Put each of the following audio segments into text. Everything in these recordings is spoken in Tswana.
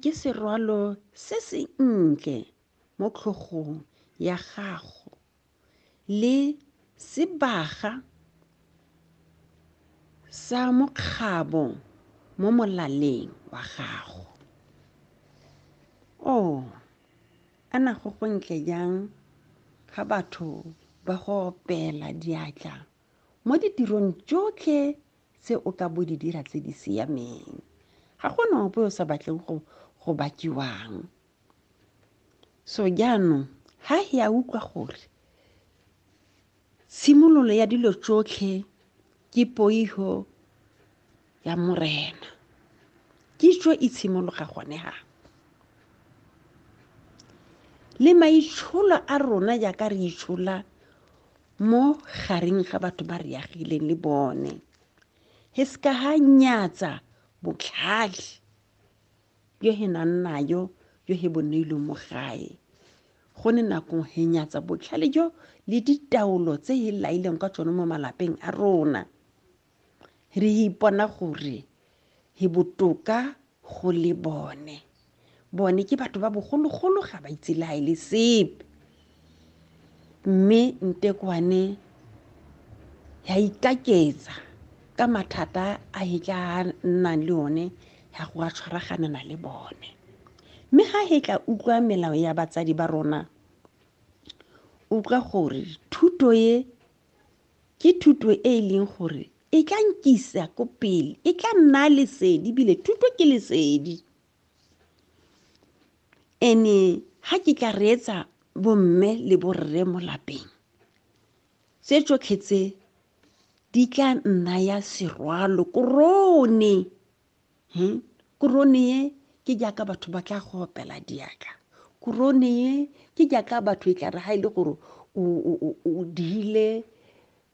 ke serwalo se se ntle mo tlhogong ya gago le sebaga sa mokgabo mo molaleng wa gago o oh, ana go go ntle jang ga batho ba go opela diatla Mo ditirong tšotlhe tse o ka bo di dira tse di siameng, ga go na ope o sa batleng go go bakiwang. So jaanong, ha he a utlwa gore tshimololo ya dilo tšotlhe ke poiho ya Morena. Kitso e tshimologa gone ha. Le maitsholo a rona jaaka re itshola mo gareng ga batho ba re agileng le bone he se ka ga nyatsa botlhale yo he nang nayo yo he boneilweng mo gae go ne nakong he nyatsa botlhale jo le ditaolo tse he laileng ka tsone mo malapeng a rona re ipona gore re botoka go le bone bone ke batho ba bogologolo ga ba itse le ga e le sepe mme ntekwane ya ikaketsa ka mathata a e tla nnang le one ya go a tshwaraganana le bone mme ga e tla utlwa melao ya batsadi ba rona utlwa gore thuto e ke thuto e e leng gore e tla nkisa ko pele e tla nna lesedi bile thuto ke lesedi ene ha ke tla reetsa bomme le borre mo lapeng tse tsotlhe tse di tla nna ya serwalo korone hmm? korone ye ke jaaka batho ba tla go opela diatla korone ye ke jaaka batho e tlare ga e le gore o diile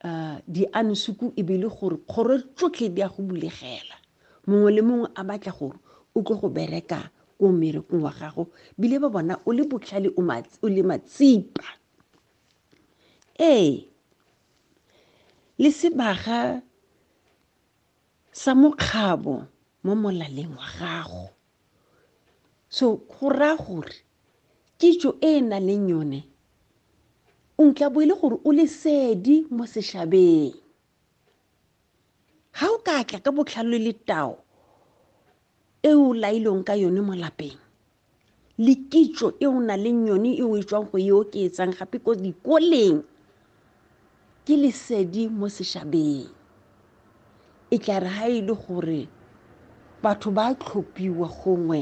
um diansuku e be le gore kgoro tsotlhe di a go bulegela mongwe le mongwe a batla gore o tlo go bereka ko mmerekong wa gago bile ba bona o le botlhale o le matsipa ee le sebaga sa mokgabo mo molaleng wa gago so go raya gore kitso e e nang leng yone o ntla bo e le gore o lesedi mo sešabeng ga o ka tla ka botlhalo le tao e o lailweng ka yone mo lapeng le kitso e o na leng yone e o e tswang go e oketsang gape ko dikoleng ke lesedi mo sešabeng e tla re ga e le gore batho ba tlhophiwa gongwe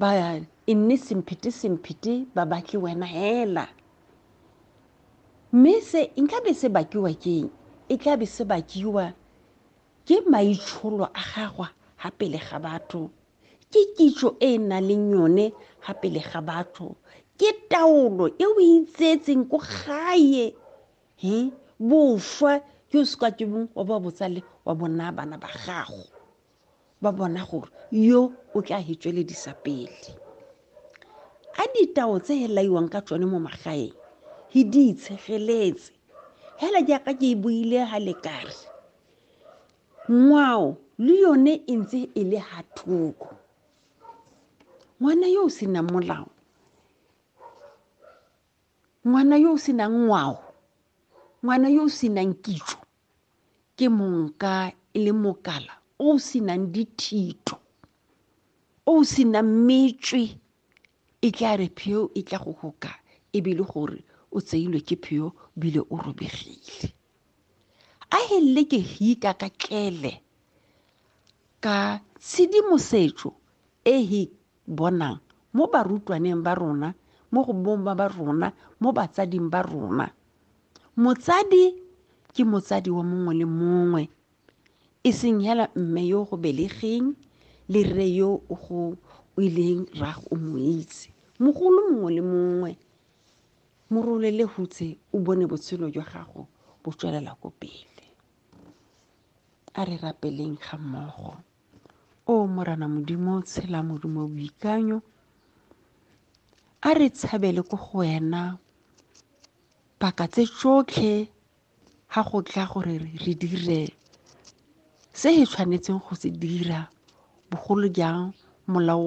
ba e nne semphete semphete ba batle wena hela mme se nkabe se bakiwa keng e tlabe se bakiwa Ke maitsholo a gagwe ga pele ga batho. Ke kitso e e nang le yone ga pele ga batho. Ke taolo e o itseetseng ko gae he boswa ke o seka ke bong wa ba botsale wa bona bana ba gago ba bona gore yo o tla he tsweledisa pele a ditao tse he laiwang ka tsone mo magaeng he di itshegeletse hela jaaka ke e buile ga lekare ngwao le yone e ntse e le ha thoko ngwana yo o senang molao ngwana yo o senang ngwao ngwana yo o senang kitso ke monka e le mokala o o senang dithito o o senang metswe E tla re pheo e tla go goka e be le gore o tseilwe ke pheo bile o robegile a helele ke hika ka tlele ka tshedimosetso e he bonang mo barutwaneng ba rona mo go bomma ba rona mo batsading ba rona motsadi ke motsadi wa mongwe le mongwe e seng hela mme yo go belegeng le rre yo o go o ileng rrago o mo itse mogolo mongwe le mongwe mo rolele hutse o bone botshelo jwa gago bo tswelela ko pele a re rapeleng ga mmogo o morana modimo tshela modimo boikanyo a re tshabele ko go wena paka tse tsotlhe ga go tla gore re dire se e tshwanetseng go se dira bogolo jang molao wa